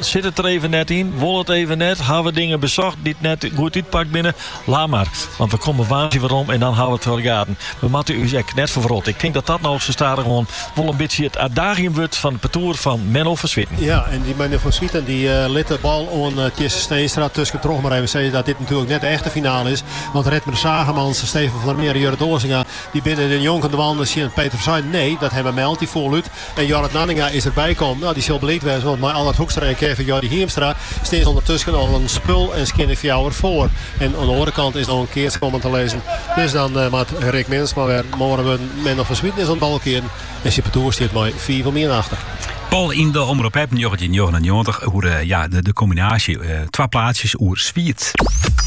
Sit it der even net yn? Wol it even net? Hawwe we dingen besocht dy't net goed útpakt binne? Laat mar, want we komme woansdei werom en dan hawwe we it fergetten. We moatte ús ek net ferwrotte. Ik tink dat dat no sa stadichoan wol in bytsje it adagium wurdt fan it partoer fan Menno van Zwieten. Ja, en dy Menno van Zwieten dy lit de bal oan Tjisse Steenstra. Tuskentroch mar even sizze dat dit natuerlik net de echte finale is, want Redmer Zaagemans, Stefan van der Meer en Jurrit Osinga dy binne dernjonken dwaande tsjin Peter van Zuiden. Nee, dat hawwe Melty foarlút En Jorrit Nanninga is der by kommen. Nou, dy sil bliid wêze, want mei Allard Hoekstra en Kevin Jordy Hiemstra stean se ûndertusken al in spul en skjin en fjouwer foar. En oan de oare kant is no in keats kommen te lizzen. Dus dan moat Rick Minnesma wer moardere wurden. Menno van Zwieten is oan it balkearen en syn partoer stiet mei fiif om ien achter. Poll yn de Omrop App njoggentjinhûndertnjoggenennjoggentich oer de kombinaasje twa plaatsjes oer Swiet.